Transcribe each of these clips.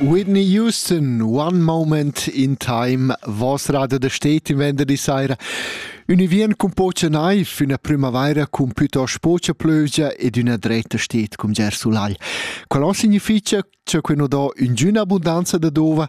Whitney Houston, One Moment in Time, vos radio da stet in venderdi saira. Ün vien cun pocha naiv, üna primavaira cun pütost pocha plögia ed üna dretta stet cum Ger Sulagl. Qual ho significha cha que nu do üngüna abundanza da dova?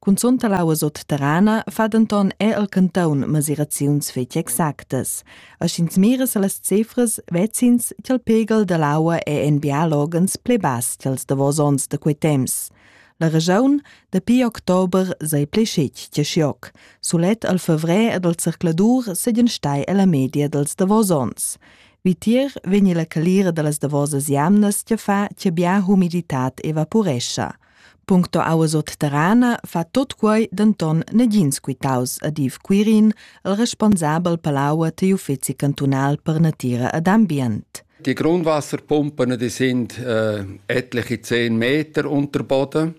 Cunzunt all'aua sotterrana fa denton er el cantaun mesiraziuns fetg exactas. A sch'ins mira sa las cifras, vecins ch'el pegel dall'aua è en bialogens pli bass ch'els davos onns da quei temps. La regiun dapi october sei pli schit che schioc. Sulet al fevrer ed al circladur segan stai alla media dels davos ons. Vitier vegni la calira dallas davosas jamnas che fa che bia humiditat evaporescha. Puncto auas otterana fa tot quei denton negins quitaus ad Yves Quirin, il responsabel per l'aua digl uffeci cantunal per natira ed ambient. Die Grundwasserpumpen die sind äh, etliche 10 Meter unter Boden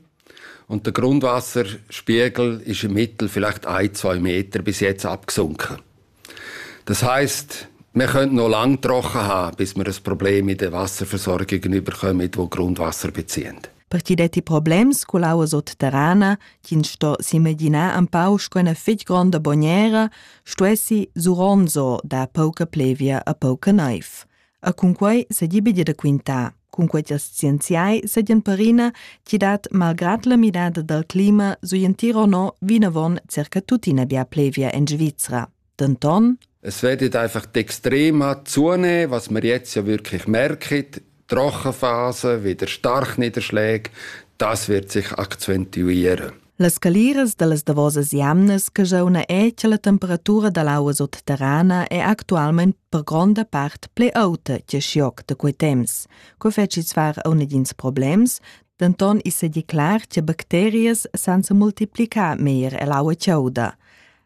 und der Grundwasserspiegel ist im Mittel vielleicht ein, zwei Meter bis jetzt abgesunken. Das heisst, wir können noch lange getroffen haben, bis wir ein Problem in der Wasserversorgung überkommen, das Grundwasser beziehen. Partideti problems cu l'aua sotterrana, ch'ins sto s'imaginar un pau sco ina fitg gronda bognera, stuessi Suronzo dar pauca plevia a pauca naiv. E cunquei seigi bia da quintar. Cunquei ch'ils scienziai seigien perina chi dat malgrad la midada dal clima sui in Tirono vinavon circa tuttina bia plevia en Svizra. Denton Es werden einfach die extrema zunehmen, was wir jetzt ja wirklich merken. Die Rochenphase, wieder Starkniederschläge, das wird sich akzentuieren. Las scaliras da las davosas jamnas che jauna è che la temperatura da l'aua sutterrana è actualmain per gronda part pli auta che schioc da quei temps. Co feci svar una dins problems, denton i sedi clar che bacterias sansa multiplicar meglier l'aua chauda.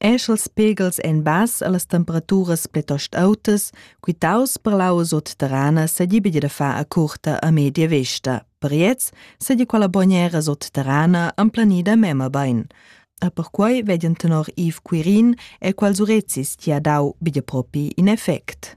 esch els pegels en bass allas temperaturas pletost autas, quitaus per l'aua sotterrana s'agibi da far a curta a media vesta. Per iez sedi quella bognera sotterrana emplanida mema bain. A perquai vedian tenor Yves Quirin e quals urezis ti ha dau bia propi in effect.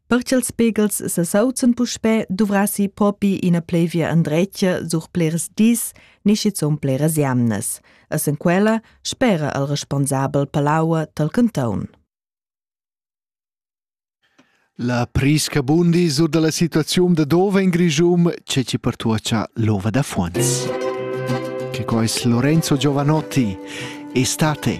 Per ch'ils pegls sesauzan puspè, duvrassi propi ina plevia endretga sur plirs dis ni schizunt pliras jamnas. Essend quella, spera il responsabel per l'aua tal canton. La prisca bundi sur dalla situaziun da dove in Grigium c'è ci pertuacia l'ova da Fuons. Che quais Lorenzo Giovanotti, estate!